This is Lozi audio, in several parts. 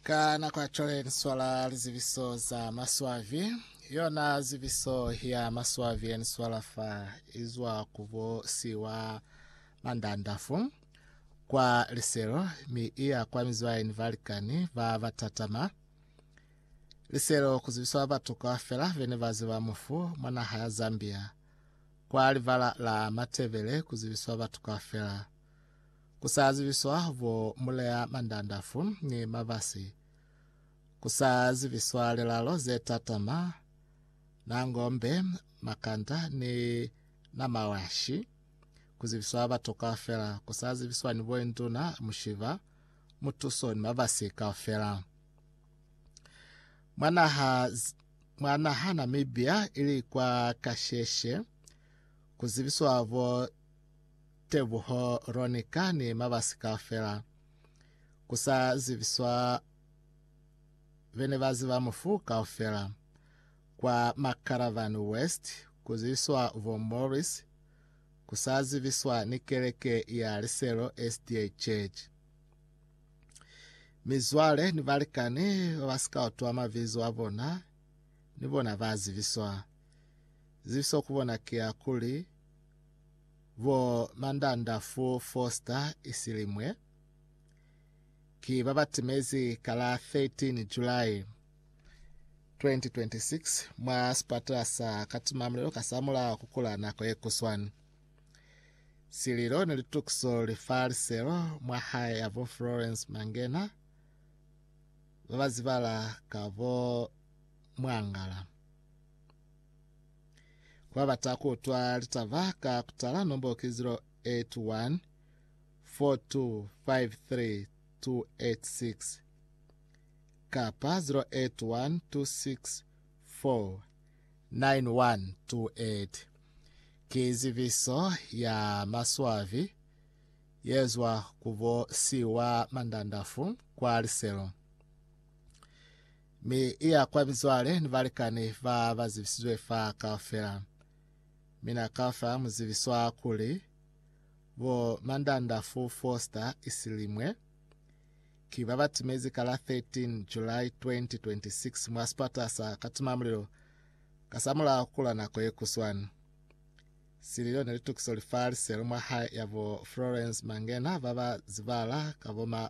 Ka nako ya cwale ni swala lizibiso za maswabi. Yona zibiso ya maswabi ye ni swala fa izwa ku bo si wa mandandafu kwa liselo mi iya kwa mizwaini balikani ba batatama. Liselo ku zibiswa batu kaufela bene ba ziba mufu mwa naha ya Zambia. Kwa libala la Matebele ku zibiswa batu kaufela. Ku sa zibiswa bo mulea mandandafu ni mabasi, ku sa zibiswa lilalo ze tatama, na ngombe, makanda ni na mawashi, ku zibiswa batu kaufela, ku sa zibiswa ni boinduna, mushiba, mutuso ni mabasi kaufela. Mwa naha, mwa naha Namibia ili kwa kasheshe, ku zibiswa bo Tebuho Ronnie kani mabasi kaufela kusa zibiswa bene baziba mufu kaufela kwa Macaravan West kuzibiswa bo Morris kusa zibiswa ni keleke ya Liselo SDA Church. Mizwale ni balikani babasika utwa mabizo abona ni bona ba zibiswa. Zibiso kubona kia kuli Bo Mandandafu Foster Isilimwe ki ba ba timezi ka la 13 July 2026 mwa sipatela sa Katimamulilo kasamulaho ku kula nako ye kuswani. Sililo ni litukiso li fa liselo mwa hae ya bo Florence Mangena ba ba zibala ka bo Mwangala. Kwabata kuutwa litaba ka kutala nombo ki 081 4253286 kapa 0812649128. Ki zibiso ya maswabi yezwa kubo Siwa Mandandafu kwa liselo. Mi i ya kwa mizwale ni balikani ba ba zibisizwe fa kaufela. Mi na ka fa muzibiswa kuli, Bo Mandandafu Foster Isilimwe, ki ba ba timezi ka la 13 July 2026 mwa sipata sa Katimamulilo kasamulaho kula nako ye kuswani. Sililo ne litukiso li fa liselo mwa hae ya bo Florence Mangena ba ba zibala ka bo ma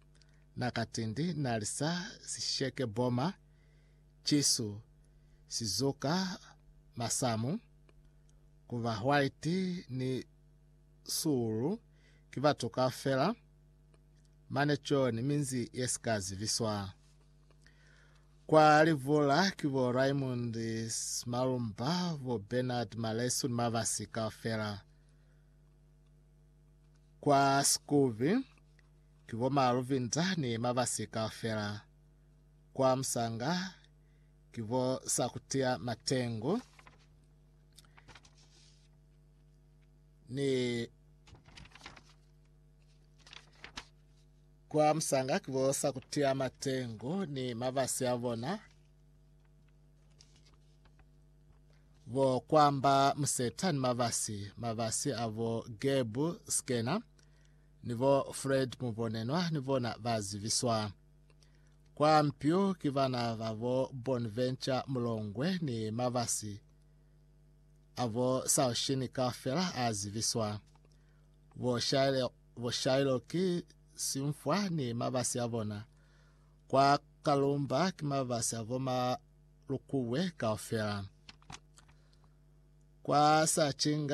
Na katindi na lisa sisheke boma, cisu si zuka masamu, ku ba white ni suulu ki batu kaufela, mane coni minzi ye si ka zibiswa. Kwa livula ki bo Raymond Smalumba, bo Bernard Malesu ni mabasi kaufela. Kwa Skubi, Ki bo ma Luvinza ni Mabasi kaufela. Kwa Musanga ki bo Sakutia Matengu ni Kwa Musanga ki bo Sakutia Matengu ni Mabasi a bona. Bo Kwamba Museta ni Mabasi, Mabasi a bo Gebu Skena. ni bo Fred Mubonenwa ni bona ba zibiswa kwa mpyu ki bana ba bo Bonventure Mulongwe ni mabasi a bo Saushini kaufela a zibiswa bo Shailo, bo Shailo ki Simfwa ni mabasi a bona kwa Kalumba ki mabasi a bo Malukubwe kaufela kwa Sachinga